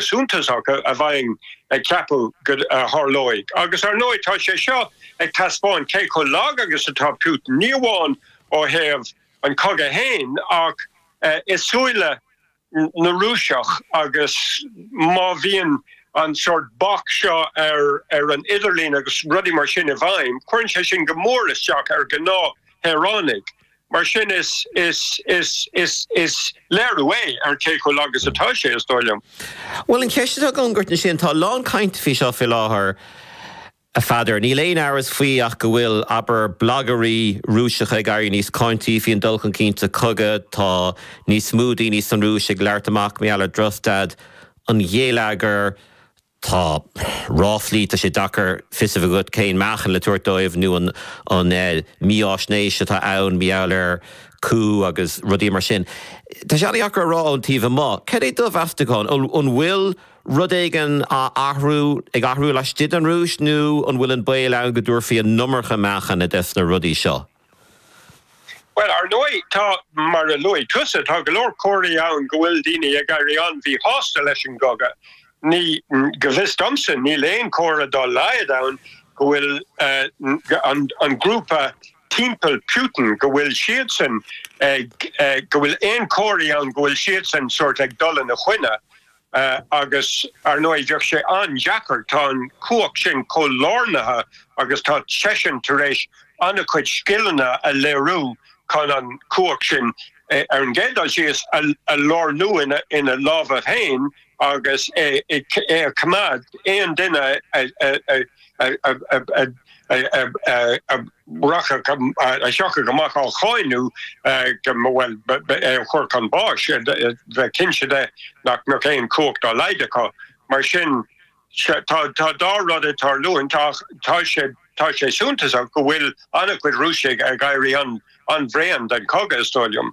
suntasach a bheinn ag ceapadh go dtarlóidh. Agus, ar ndóigh, tá sé seo ag taispeáint cé chomh lag agus atá Putin, ní amháin ó thaobh an chogaidh fhéin ach i súile na Rúiseach agus má bhíonn an sórt bac seo ar an idirlíon agus rudaí mar sin i bhfeidhm, cuireann sé sin go mór isteach ar ghnáth shaoránaigh. Mar sin, is léiriú é ar cé chomh lag is atá sé, is dóigh liom. Bhuel, an cheist atá agam duit ansin, tá a lán cainte faoi seo fé láthair, a Pheadair. Níl aon amhras faoi ach go bhfuil, abair, blagairí Rúiseacha ag éirí níos cáintí faoi an dul chun cinn sa chogadh, tá níos mó daoine san Rúis ag labhairt amach mar gheall ar drochstaid an gheilleagair, Tá ráflaí, tá sé deacair fios a bheith agat cén meáchan le tabhairt dóibh nó an mífhaisnéis atá ann mar gheall ar coup agus rudaí mar sin. Tá sé an-dheacair a rá ón taobh amuigh cad é do mheastachán, an bhfuil rud éigin á athrú, ag athrú laistigh den Rúis nó an bhfuil an baol ann go dtabharfaí an iomarca meáchain dos na rudaí seo? Bhuel, ar ndóigh, tá. Mar a luaigh tusa, tá go leor comharthaí ann go bhfuil daoine ag éirí an-mhíshásta leis an gcogadh. Ní, go bhfios domsa, níl aon chomhartha dá laghad ann go bhfuil an, an grúpa timpeall Putin, go bhfuil siadsan ag, go bhfuil aon chomharthaí ann go bhfuil siadsan sórt ag dul ina choinne. Agus, ar ndóigh, bheadh sé an-deacair, tá an chumhacht sin chomh lárnaithe agus tá seisean tar éis an-chuid scileanna a léiriú chun an chumhacht sin, ar an gcéad dul síos, a lárnú ina lámha féin agus é a choimeád. Aon duine a. a thiocfadh amach á cháineadh go, bhuel, é a chur chun báis, bheith cinnte de nach mbeadh aon chumhacht dá laghad acu. Mar sin, tá dhá rud ag tarlú anseo. Tá sé suntasach go bhfuil an-chuid Rúisigh ag éirí an-bhréan den chogadh, is dóigh liom.